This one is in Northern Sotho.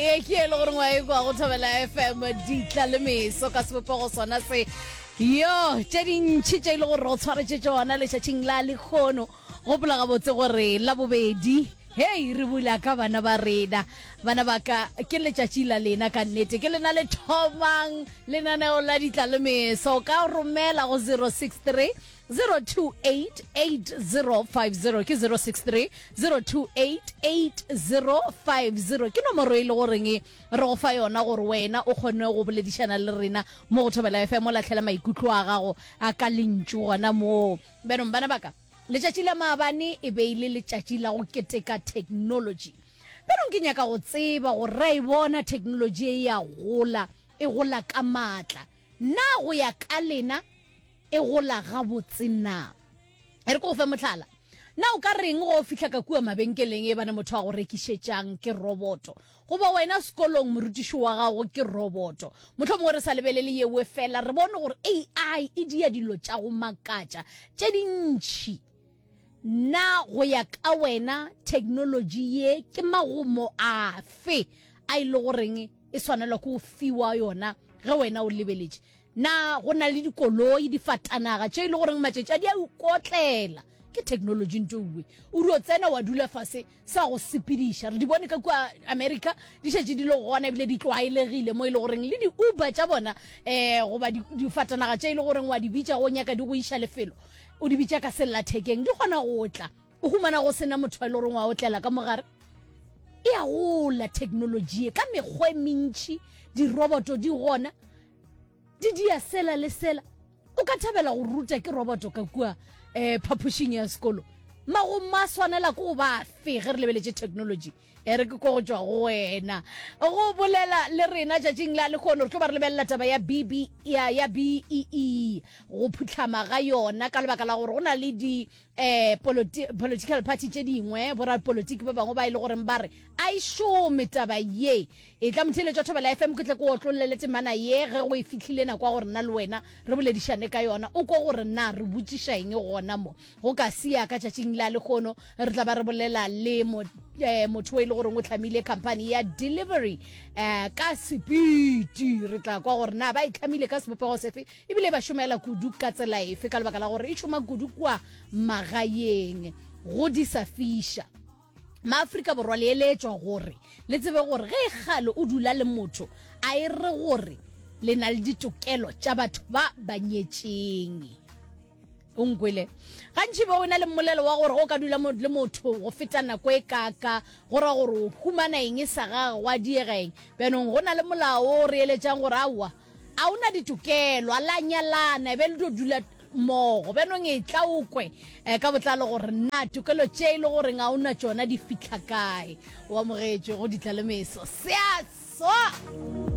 e ke e le goreng wa e kwa go thobela fm ditla le meso ka sebopego sona se yo tše dintšhi tše e le gore o tshwaretse tsona letšatšing la lekgono gopola gabotse gore la bobedi hei re bula ka bana ba rena bana ba ka ke letšatši la lena ka nnete ke lena le thomang lenaneo la ditla le meso ka romela go 063 02880500 ke 063 02880500 ke nomoro e le goreng e re go fa yona gore wena o kgone go boledišana le rena mo go thobela fm o latlhela maikutlo a gago a ka lentšu gona moo benong bana baka letšatši la maabane e be e le letšatši la go keteka technology benong ke nyaka go tseba gore ra e bona technology e ya gola e gola ka maatla na go ya ka lena e gola gabotse na? E re ke go fe mohlala. Na o ka reng go fihla ka kua mabenkeleng e bane motho a go rekišetšang ke roboto? Goba wena sekolong morutiši wa gago ke roboto? Mohlho mongwe re sa lebelele yewe fela, re bone gore AI e dia dilo tša go makatša tše dintši. Na go ya ka wena theknolotši ye ke magomo afe a e le goreng e swanelwa ke go fiwa yona ge wena o lebeletše? Na go na le dikoloi, difatanaga, tše e le goreng matšatši a di a ukotlela? Ke technology ntoue. O dio tsena wa dula fase, sa go sepediša. Re di bone ka kua America, di šetše di le gona ebile di tlwaelegile mo e le goreng le di-Uber tša bona eh goba difatanaga tše e le goreng wa di bitša go nyaka di go iša lefelo, o di bitša ka sellathekeng, di kgona go tla. O humana go sena motho e le goreng wa otlela ka mogare. E a gola technology ye ka mekgwa e mentši, diroboto di gona. Didia sela le sela. O ka thabela go ruta ke roboto ka kua um phapošing ya sekolo mago ma swanela ke go ba fe ge re lebeletše technology e re ke ko go tšwa go wena go bolela le rena tšatšing la lekgono re tlo ba re lebelela taba ya bb ya, ya bee go phutlhama ga yona ka lebaka la gore go na le di eh politi political party tše dingwe borapolotiki ba bangwe ba e le goreng ba re a e šome taba ye e tla motheletšwa thobela fm ke tle ko otlolele temana ye ge go e fihlile nako ya gore nna le wena re boledišane ka yona o ko gore na re botšiša eng gona mo go ka sia ka tšatšing la lekgono re tla ba re bolela le mo eh, motho o e le goreng o tlhamile company ya delivery eh, ka sepiti re tla kwa gore na ba e tlhamile ka sebopego sefe E bile e ba šomela kudu. Ka tsela efe? Ka lebaka la gore e šoma kudu kua magaeng go disa fiša. Maafrika Borwa le eletšwa gore le tsebe gore ge e kgale o dula le motho a e re gore le na le ditokelo tša batho ba ba nyetšeng. o nkwele gantši be o na le mmolelo wa gore o ka dula le motho go feta nako e kaka go ra gore o humana eng e sa gage wa diega eng bjanong go na le molao o re eletsang gore aowa a o na ditokelo a la nyalana e be le tlo dula mmogo bjanong e tla o kwe um ka botlalo gore na tokelo tše e le goreng a o na tšona di fitlha kae o amogetše go ditla le meso seaso